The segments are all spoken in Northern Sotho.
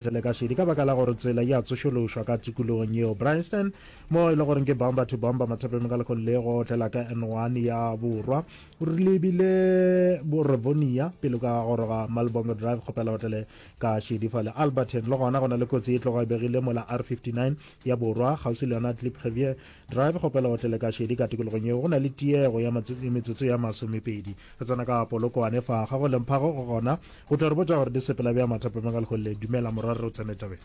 Re le ka šedi ka baka la gore tsela ya tsošološwa ka tikologong yeo Bryanston mo e le goreng ke bomber to bomber mathapeng ka lekgolo le go otlela ka N1 ya borwa re lebile Borovonia pele ka goroga Malbongo Drive kgopela otlele ka šedi fa le Alberton le gona go na le kotsi e tloga e begile mola R59 ya borwa kgauswi le yona Klipgevier Drive kgopela o tlele ka šedi ka tikologong yeo go na le tiego ya metsotso ya masomepedi. Re tsena ka Polokwane fa ga go lemphago go gona. O tla re botša gore di sepela bja mathapameng a leholele. Dumela morwa re o tsene tabeng.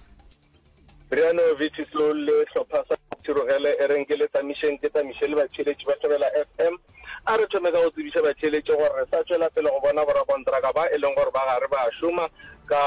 Briano Vici Soul le hlopha sa Thirogele e reng ke le tsamišeng ke tsamiše le batheeletši ba Thobela FM. A re thome ka go tsebiša batheeletši gore re sa tšwela pele go bona borakontraka ba e leng gore ba gare ba a šoma ka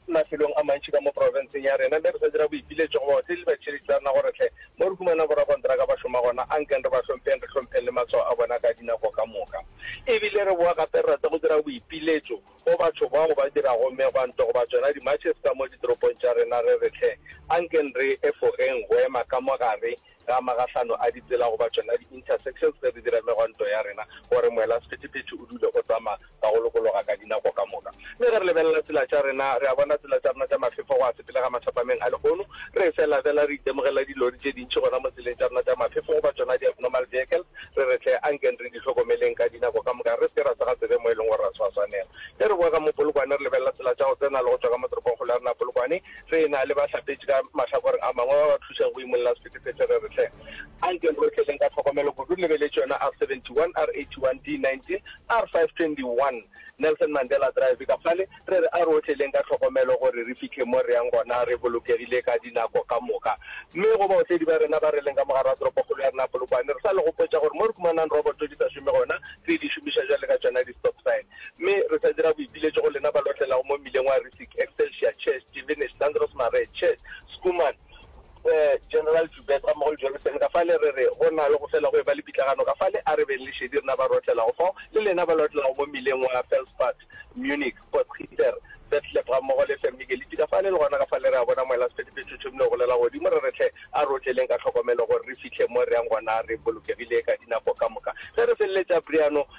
Mafelong a mantši ka mo profenseng ya rena, mme re sa dira boipiletšo go ba otledi le batšheletši ba rena gore hle mo re humana borakontraka ba šoma gona, ankeng re ba hlompheng, re hlompheng le matshwao a bona ka dinako ka moka. E bile re boa gape re rata go dira boipiletšo go batho bao ba dirago megwanto goba tšona di-marches ka mo ditoropong tša rena, re re hle ankeng re efogeng go ema ka mo gare ga magahlano a ditsela goba tšona di-intersections ge re dira megwanto ya rena gore moela sephethephethe o dule o tsamaya ka go lokologa ka dinako ka moka. Mme ge re lebelela tsela tša rena, re a bona tsela tša rena tša maphefo go a sepelega mathapameng a lehono. Re fela fela re itemogela dilori tše dintši gona mo tseleng tša rena tša maphefo goba tšona di-abnormal vehicles, re re hle ankeng re di hlokomeleng ka dinako ka moka re se ke ra sa ga tsebe mo e leng gore ra tshwaswanela. Ge re boega mo Polokwane re lebelela tsela tša go tsena le go tšwa ka mo toropongkgolo ya rena Polokwane, tse na le bahlapetši ka mahlakoreng a mangwe ba ba thušago go imolla sephethephethe. Re re, Hle, a nkeng re o tleleng ka tlhokomelo kudu re lebeletše yona R71, R81, D19, R521, Nelson Mandela Drive, ka fale. Re re, A re o tleleng ka tlhokomelo gore re fihle mo re yang gona re bolokegile ka dinako ka moka. Mme go baotledi ba rena ba re leng ka mogare wa toropokgolo ya rena Polokwane, re sa le gopotša gore mo re humanang roboto di sa šome gona, re di šomiša bjale ka tšona di-stop sign. mme re sa dira boipiletšo go lena ba lotlelago mo mmileng wa Rissik, Excelsior, Church, Stevenage, Sandros Marais, Church, Schoeman, eh, General Joubert ga mmogo le John Seneca fale, re re go na le go fela go eba le pitlagano ka fale. A re beng le šedi rena ba re otlelago fao, le lena ba le otlelago mo mmileng wa Felspad, Munich, Potsgieter, Betleb ga mmogo le Vermigeliti ka fale, le gona ka fale re a bona moela sephethephethe o thomile go golela godimo, re re, Hle, a re otleleng ka tlhokomelo gore re fihle mo re yang gona re bolokegile ka dinako ka moka. Ge re feleletša Briano,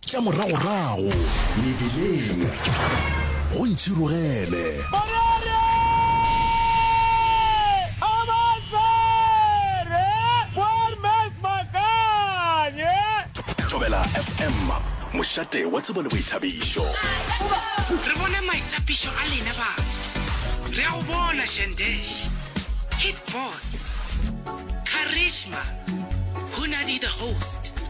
tša moragorago mebileng go ntšhirogele. Thobela FM, mošate wa tsebo le boithabišo. Re bone maitapišo a lena baso. Re a go bona Shandesh, Hit Boss, Karishma, Hunadi the Host.